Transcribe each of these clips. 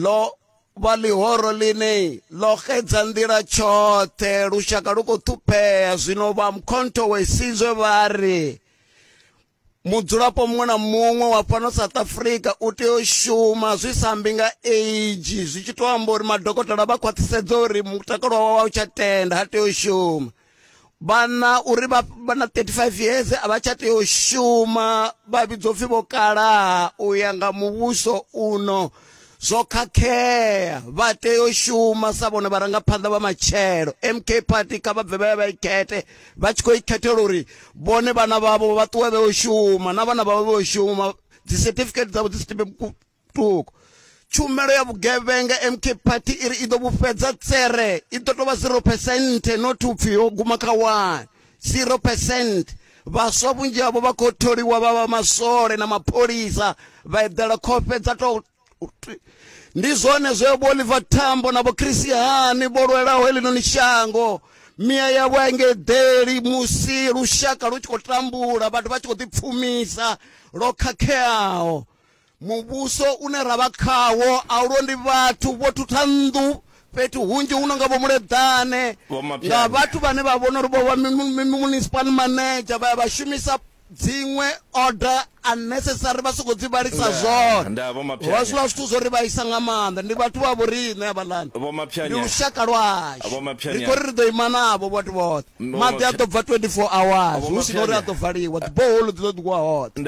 ḽo vha ḽihoro ḽine ḽo xedza nḓila tshoṱhe lushaka lu khou ṱhuphea zwino vha mkhonto we sizwe vha ri mudzulapo muṅwe na muṅwe wa fhano south africa u tea u shuma zwi sa mbi nga age zwi tshi tou amba uri madokotela vha khwaṱhisedza uri mutakalo wawe wa u tsha tenda ha tea u shuma vhana uri vha vha na 35 years a vha tsha tea u shuma vha vhidzwa upfhi vho kalaha u ya nga muvhuso uno zwo khakhea vha tea u shuma sa vhone vharangaphanḓa vha matshelo mk party kha vha bve vha ya vha ikhethe vha tshi khou ikhethela uri vhone vhana vhavho vha ṱuwe vhe u shuma na vhana vhavho vhe u shuma dzi certificate dzavho dzi si tibe Thoko. Tshumelo ya vhugevhenga MK Party i ri i ḓo vhufhedza tsere i ḓo tovha 0 percent not upfi yo guma kha 1 0 percent vhaswa vhunzhi havho vha khou tholiwa vha vha maswole na mapholisa vha eḓela khofhe dza tou ndi zwone zwe vho Oliver Tambo na vho Christiani vho lwelaho heḽinoni shango miya yavho a inge ḓeli musi lushaka lu tshi khou tambula vhathu vha tshi khou ḓipfumisa lwo khakheaho Muvhuso une ra vha khawo a u londi vhathu vho thutha nnḓu fhethu hunzhi hu no nga vho Muleḓane nga vhathu vhane vha vhona uri vho vha municipal manager vha ya vha shumisa dziṅwe order unnecessary vha sokou dzi vhalisa zwoṱhe vha zwi vha zwithu zwo ri vhaisa nga maanḓa ndi vhathu vha vho riṋe havhaḽani ndi lushaka lwashu ri khou ri ri ḓo ima navho vhathu vhoṱhe maḓi a ḓo bva 24 hours hu si na uri a ḓo valiwa dziboholo dzi ḓo ḓiwa hoṱhe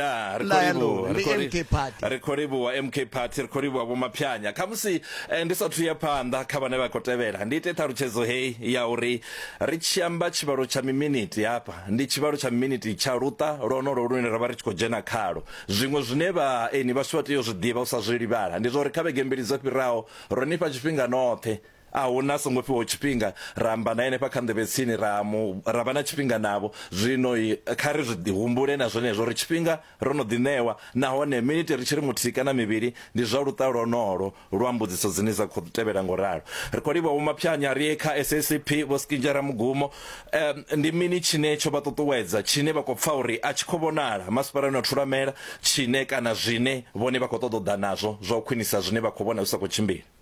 ri khou livhuwa mk party ri khou livhuwa vhomaphanya khamusi eh, ndi sathu ya phanḓa kha vhane vha khou tevhela ndi ite ṱhalutshedzo heyi ya uri ri tshi amba tshivhalo tsha miminiti hafha ndi tshivhalo tsha miminiti tsha luṱa lwonolo lune ra vha ri tshi khou dzhena khalo zwiṅwe zwine vhaeni vhashu vha tea u zwi ḓivha u sa zwi livhala ndi zwa uri kha vhege mbili dzo fhiraho ro nifha tshifhinga noṱhe A huna a songo fhiwaho tshifhinga, ra amba na henefha kha nḓevhe tsini, ra mu, ra vha na tshifhinga navho. Zwino kha ri zwi humbule na zwenezwo, uri tshifhinga ro no ḓi ṋewa, nahone miniti ri tshi ri muthihi kana mivhili, ndi zwa luṱa lwonolwo lwa mbudziso dzine dza khou tevhela nga u ralo. Ri khou livhuwa Vho Maphanya, ri ye kha SACP, Vho Skinja Ramugumo. Um, ndi mini tshine tsho vha ṱuṱuwedza, tshine vha khou pfa uri a tshi khou vhonala masipalani wa Thulamela, tshine, kana zwine vhone vha khou ṱoḓa u ḓa nazwo zwa u khwinisa zwine vha khou vhona zwi sa khou tshimbila?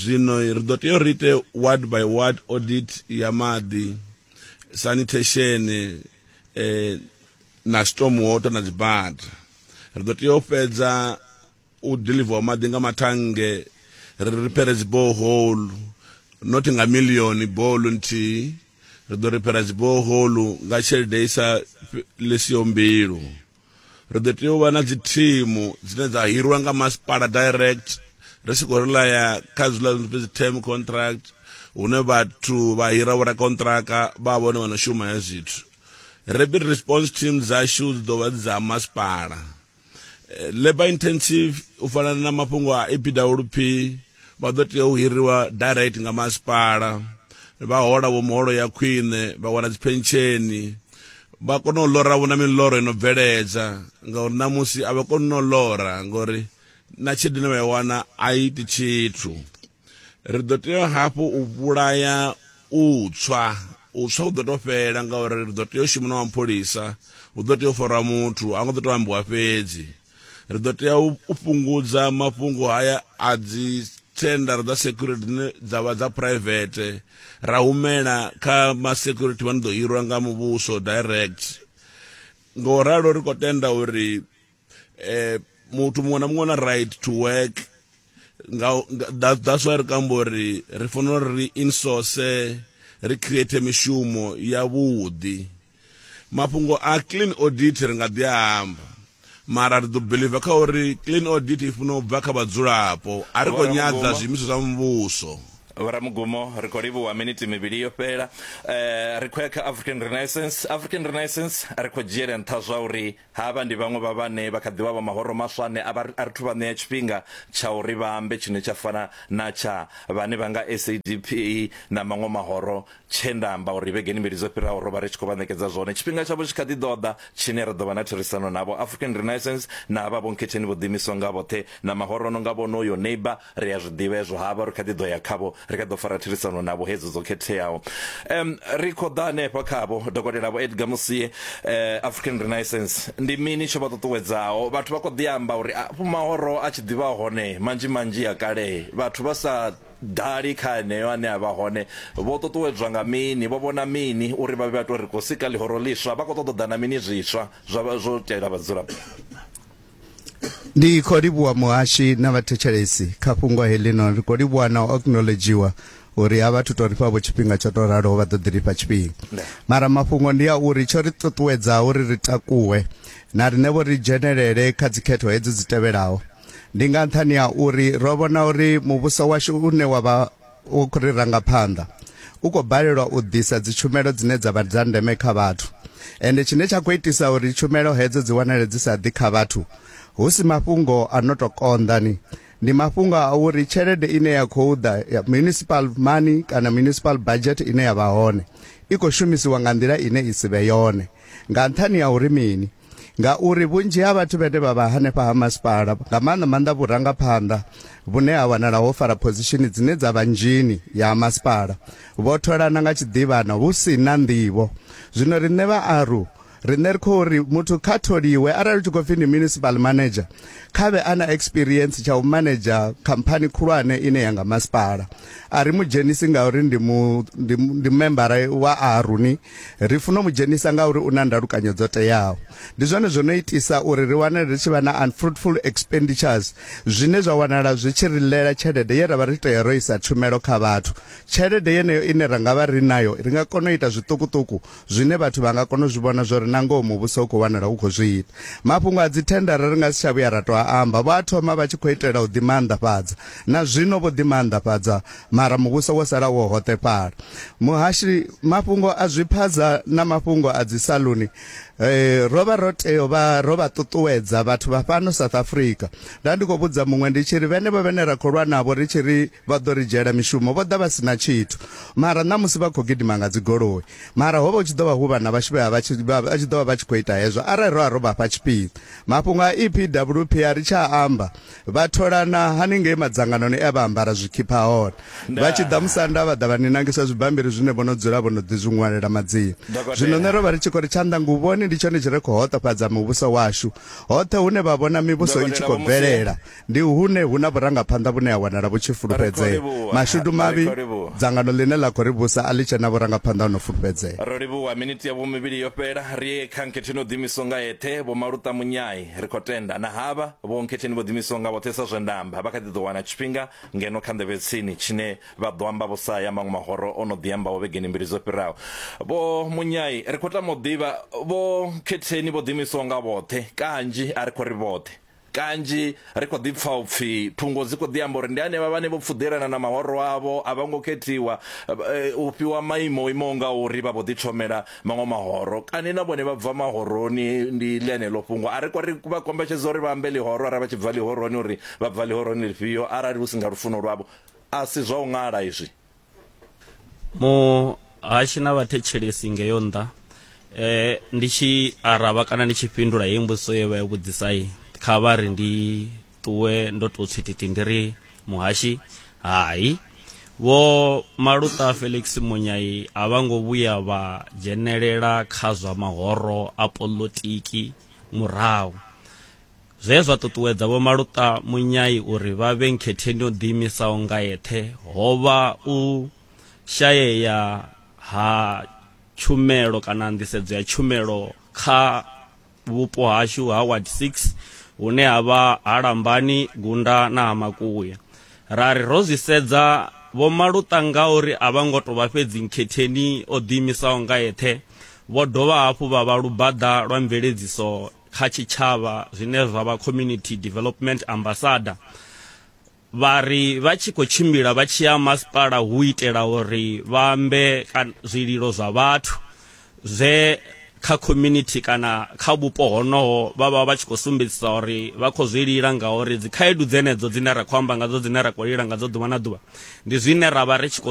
zwino ri ḓo tea uri ite ward by ward audit ya maḓi sanitation eh, na storm water na dzibada ri ḓo tea u fhedza u deliver maḓi nga mathange ri riphere dziboholu not nga milioni boholu nthihi ri ḓo ripera dziboholu nga tshelede i sa lesiho mbilu ri ḓo tea u vha na dzi thimu dzine dza hirwa nga masipala direct ri si khou rilaya kha zwiḽa zwi pfi dzi term contract hune vhathu vha hira vho rakontraka vha vhone vha no shuma he zwithu rapid response team dzashu dzi ḓo vha dza masipala eh, labor intensive u fana na mafhungo a epwp Vha ḓo tea u hiriwa direct nga masipala, vha hola vho muholo ya khwine, vha wana dziphensheni, vha kona u lora vho na miḽoro ino bveledza ngauri ṋamusi a vha koni no lora ngori na tshelede ine vha i wana a i iti tshithu ri ḓo tea hafhu u vhulaya u tswa u tswa u ḓo to fhela ngauri ri ḓo tea u shuma na wa mpholisa hu ḓo tea u farwa muthu a ngo ḓo to ambiwa fhedzi ri ḓo tea u fhungudza mafhungo haya a dzi thendara dza security dzine dza vha dza private ra humela kha ma security vha ni ḓo hirwa nga muvhuso direct nga u ralo ri khou tenda uri eh, muthu muṅwe na muṅwe na right to work nga, nga, that's why ri kamba uri ri fanela uri ri insource ri create mishumo yavhuḓi Mafhungo a clean audit ri nga ḓi a amba mara ri ḓo beliva kha uri clean audit i funa u bva kha vhadzulapo a ri khou nyadza zwiimiswa zwa muvhuso. Vhoramugumo, ri khou livhuwa miniti mivhili yo fhela. Ri khou ya kha African Renaissance. African Renaissance, ri khou dzhiela nṱha zwa uri Havha ndi vhaṅwe vha vhane vha kha ḓi vha vha mahoro maswa ane a vha ri, A ri thu vha ṋea tshifhinga tsha uri vha ambe tshine tsha fana na tsha vhane vha nga SADP na maṅwe mahoro tshe nda amba uri vhegeni mbili dzo fhiraho ro vha ri tshi khou vha ṋekedza zwone. Tshifhinga tshavho tshi kha ḓi ḓo ḓa tshine ra ḓo vha na therisano navho. African Renaissance na havha Vho Nkhetheni vho ḓiimisaho nga vhoṱhe na mahoro a no nga vhonoyo, Neighbour, ri a zwi ḓivha hezwo havha ri kha ḓi ḓo ya khavho ri kha ḓo fara therisano navho hedzo dzo khetheaho um ri kho ḓa hanefha khavho dokotela vho Edgar Musie uh, African Renaissance ndi mini tsho vha ṱuṱuwedzaho vhathu vha kho ḓi amba uri afho mahoro a tshi ḓivha hone manzhi manzhi ya kale vhathu vha sa dali kha heneyo ane a vha hone vho ṱuṱuwedzwa nga mini vho vhona mini uri vha vhe vha tou ri khou sika ḽihoro ḽiswa vha khou ṱoḓa na mini zwiswa zwa zwo tela vhadzulapo ndi khou livhuwa muhashi na vhathetshelesi kha fhungo helino ri khou livhuwa na u acknowledgiwa uri a vhathu to ri fha vho tshifhinga tsho to raloho vha ḓo ḓi lifha tshifhinga mara mafhungo ndi a uri tsho ri ṱuṱuwedza uri ri takuwe na rine vho ri dzhenelele kha dzikhetho hedzi dzi tevhelaho ndi nga nṱhani ha uri ro vhona uri muvhuso washu une wa vha u ri ranga phanḓa u khou balelwa u ḓisa dzitshumelo dzine dza vha dza ndeme kha vhathu ende tshine tsha khou itisa uri tshumelo hedzo dzi wanale dzi sa ḓi kha vhathu hu si mafhungo a no tou konḓani ndi mafhungo a uri tshelede ine ya khou ḓa ya municipal money kana municipal budget ine ya vha hone i khou shumisiwa nga nḓila ine i si vhe yone nga nṱhani ya uri mini ngauri vhunzhi ha vhathu vhene vha vha hanefha ha masipala nga maanḓa maanḓa vhurangaphanḓa vhune ha wanala ho fara phozishini dzine dza vha nzhini ya masipala vho tholana nga tshiḓivhana hu si na nḓivho zwino riṋe vhaaru riṋe ri khou ri muthu kha tholiwe arali u tshi khou pfhi ndi municipal manager kha vhe a na experience tsha u manager khamphani khulwane ine ya nga masipala a ri mu dzhenisi ngauri ndi mu ndi membara wa aruni Ri funa u mu dzhenisa ngauri u na ndalukanyo dzo teaho. Ndi zwone zwo no itisa uri ri wane ri tshi vha na unfruitful expenditures zwine zwa wanala zwi tshi ri ḽela tshelede ye ra vha ri tea ro isa tshumelo kha vhathu. Tshelede yeneyo ine ra nga vha ri nayo ri nga kona u ita zwiṱukuṱuku zwine vhathu vha nga kona u zwi vhona zwa uri na ngoho Muvhuso u khou wanala u khou zwi ita. Mafhungo a dzithendara ri nga si tsha vhuya ra tou a amba. Vho a thoma vha tshi khou itela u ḓimaanḓafhadza. Na zwino vho ḓimaanḓafhadza Mara muvhuso wo sala wo hoṱefhala. Muhashi, mafhungo a zwiphaza na mafhungo a dzi saluni eh, ro vha ro tea vha ro vha ṱuṱuwedza vhathu vha fhano South Africa. Nda ndi khou vhudza muṅwe ndi tshi ri vhenevho vhene ra khou lwa navho ri tshi ri vha ḓo ri dzhiela mishumo vho ḓa vha sina tshithu. Mara ṋamusi vha khou gidima nga dzigoloi. Mara hovha hu tshi ḓo vha hu vhana vhashu vhe vha tshi vha tshi ḓo vha vha tshi khou ita hezwo arali ro vha ro vha fha tshifhinga. Mafhungo a EPWP a ri tsha amba vha tholana haningei madzanganoni e a vha ambara zwikhipha hone vha tshi ḓa musanda vha ḓa vha ni nangisa zwibammbiri zwine vho no dzula vho no ḓi zwi ṅwalela madzina zwino nṋe ro vha ri tshi khou ri tshanḓa nguvhoni ndi tshone tshi re khou hoṱofhadza muvhuso washu hoṱhe hune vha vhona mivhuso i tshi khou bvelela ndi hune hu na vhurangaphanḓa vhune ha wanala vhu tshi fulufhedzea mashudu mavhi dzangano ḽine ḽa khou ri vhusa a ḽi tshe na vhurangaphanḓa ho no fulufhedzea ro livhuwa miniti ya vhumivhili yo fhela ri ye kha nkhetho ino ḓimiswa nga eṱhe vho maluṱa munyai ri khou tenda na havha Vho Nkhetheni vho ḓiimisaho nga vhoṱhe sa zwe nda amba, vha kha ḓi ḓo wana tshifhinga ngeno kha nḓevhe tsini tshine vha ḓo amba vho sa ya maṅwe mahoro o no ḓi ambaho vhegeni mbili dzo fhiraho. Vho Munyai, Ri khou tama u ḓivha, Vho Nkhetheni vho ḓiimisaho nga vhoṱhe, Kanzhi a ri khou ri vhoṱhe. Kanzhi ri khou ḓi pfa u pfi thungo dzi khou ḓi amba uri ndi henevha vhane vho pfuḓelana na mahoro avho, a vho ngo khethiwa u fhiwa maimo o imaho ngauri, vha vho ḓithomela maṅwe mahoro kani na vhone vha bva mahoroni ndi ḽeneḽo fhungo a ri kwa ri vha kombetshedza uri vha ambe ḽihoro arali vha tshi bva ḽihoroni uri vha bva ḽihoroni ḽifhio arali hu si nga lufuno lwavho a si zwa u ṅala izwi muhashi na vhathetshelesi ngeyo nnḓa eh ndi tshi araba kana ndi tshi fhindula heyi mbudziso ye vha yo vhudzisai kha vha ri ndi ṱuwe ndo tou tswititi ndi ri muhashi hai vho maluta felix munyai a vha ngo vhuya vha dzhenelela kha zwa mahoro a polotiki murahu zwe zwa ṱuṱuwedza vho maluta munyai uri vha vhe nkhetheni yo ḓiimisaho nga yeṱhe ho vha u shayea ha tshumelo kana nḓisedzo ya tshumelo kha vhupo hashu ha ward 6 hune ha vha ha lambani gunda na ha makuya ra ri ro zwi sedza vho maluṱa nga uri a vha ngo to vha fhedzi nkhetheni o ḓiimisaho nga eṱhe vho dovha hafhu vha vha lubaḓa lwa mveledziso kha tshitshavha zwine zwa vha community development ambassador vha ri vha tshi khou tshimbila vha tshi ya masipala hu itela uri vha ambe zwililo zwa vhathu zwe kha community kana kha vhupo honoho vha vha vha tshi khou sumbedzisa uri vha khou zwi lila ngauri dzikhaedu dzenedzo dzine ra khou amba ngadzo dzine ra khou lila ngadzo ḓuvha na ḓuvha ndi zwine ra vha ri tshi khou